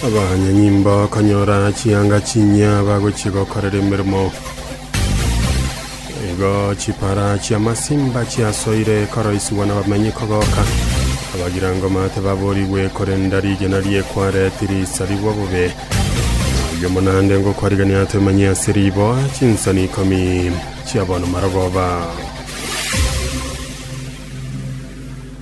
Abanyanyimbo bakonyora chianga chinyia bagochia gokorera emeremo. Igo chipara chi'amasimba chiasoire koroisigwa n'abamenyi kogoka. Abagirangoma tibaborigwe, korende rigena riekware tirisarigwa bobe. Aye omonande ngokwarigania atemenye ase riboa chinsani ikomi chi'abono marogoba.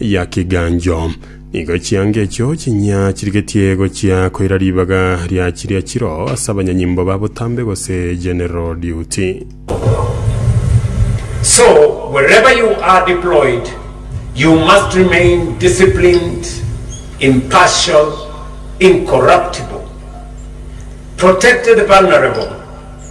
ya kiganjo. Nigo chianga echio chinya chirigetie gochia koira ribaga ria chiria chiro ase abanyanyimbo ba botambe gose general duty. So, wherever you are deployed, you must remain disciplined, impartial, incorruptible, protect the vulnerable,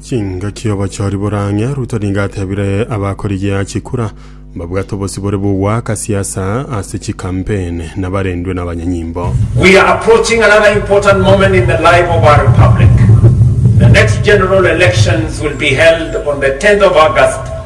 Chingaki obochori bore ang'e, Ruto nigo atebire abakorigia chikura mbabwate obosibore bw'ogoaka siasa ase chikampeni nabarendwe nabanyanyimbo. We are approaching another important moment in the life of our republic. The next general elections will be held on the 10th of August